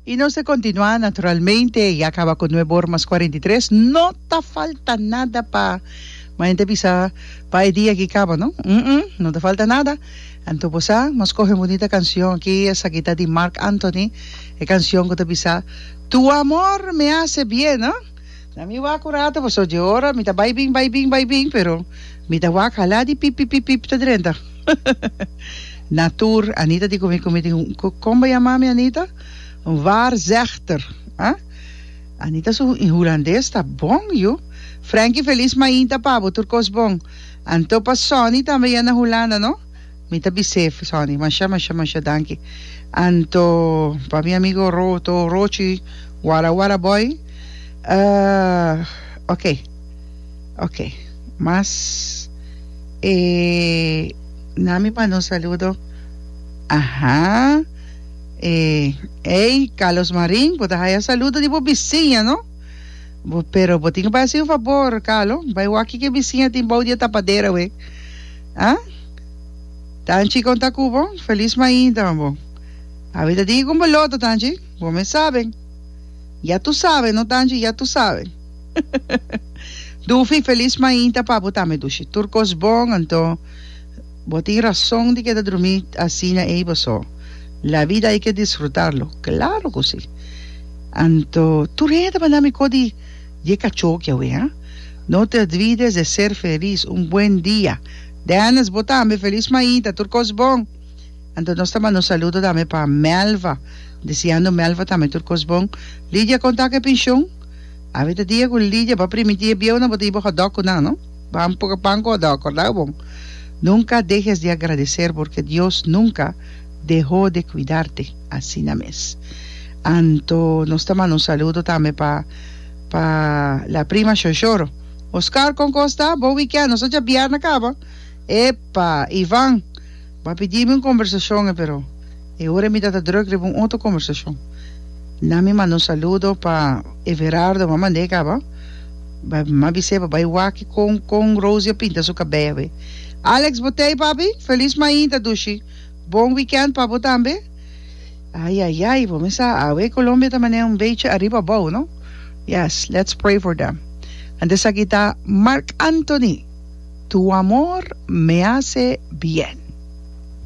I nos ta kontinuá naturalmente ya kaba ku nuebe or mas kuarenta i tres no ta falta nada pa mañana ta bisa pa e dia aki kaba no umm no ta falta nada anto bo sa nos kohe un bunita kanshon aki esaki ta di Marc Anthony e kanshon ku ta bisa tu amor me hace bien no. Na mi wak un rato paso dje ora mi ta bai bin bai bin bai bin pero mi ta wak hala di pip pip pip pip ta drenta na tur Anita di komi komi tin kon bo yama mi Anita un waarzegter ha Anita su hulandes ta bon yu Frankie Feliz mainta pa bo tur kos bon anto pa Sonny tambe ya na Hulanda no. Mi ta besef, Sonny, masha, masha, masha danki. Anto pa mi amigo Ro, to Rochi, wara wara boy. Uh, ok, ok. Mas e na mi manda un saludo. Aha, e, ey, Carlos Marin, bo ta haya saludo di bo bisiña, no? Bo, pero bo tin ke bai haci un fabor, Carlo, bai wak kiko e bisiña tin bou di e tapadera, we. Ah? Tanchi con ta cu bo? Feliz mainta bo. Abi ta digi con bo loto, Tanchi? Bo mes sabe. Ya tu sabe, no Tanchi, ya tu sabe. Dufi, feliz mainta pa bo tambe, Dushi. Tur cos bon, anto bo tin razon di keda drumi asina ey boso. La vida hay que disfrutarlo. Claro cu si. Anto tur hende ta manda mi co di Ye cacho ki awe, ha? No te olvides de ser feliz. Un buen dia. Dennis, bo tambe feliz maita. Tur cos bon. Anto nos ta manda un saludo tambe pa Melva, deseando Melva tambe tur cos bon. Lidia conta cu e pension. Awe ta dia cu Lidia ba primiti e bieunan bo ta yibo hot dog cu nan, no? Ba un poco pan cu hot dog, cordao bon? Nunca dehes di agradecer porque Dios nunca deho de cuidarte. Asina mes. Anto nos ta manda un saludo tambe pa. Pa la prima shoshoro. Oscar, Con cos ta? Bon weekend. Nos a dja bièrna caba. Epa, Ivan, bo a pidi mi un conversacion e pero e ora mi ta ta druk riba un otro conversacion. Nan mi manda un saludo pa Everardo m'a mand'é caba. Bo m'a bis'é pa bai wak con con Rosie a pinta su cabey awe. Alex, Bo t'ei, papi? Feliz mainta, dushi. Bon weekend pa bo tambe. Ai ai ai bo mesa awe Colombia ta mane un bechi ariba abou no yes let's pray for them and esaki ta Marc Anthony tu amor me hace bien.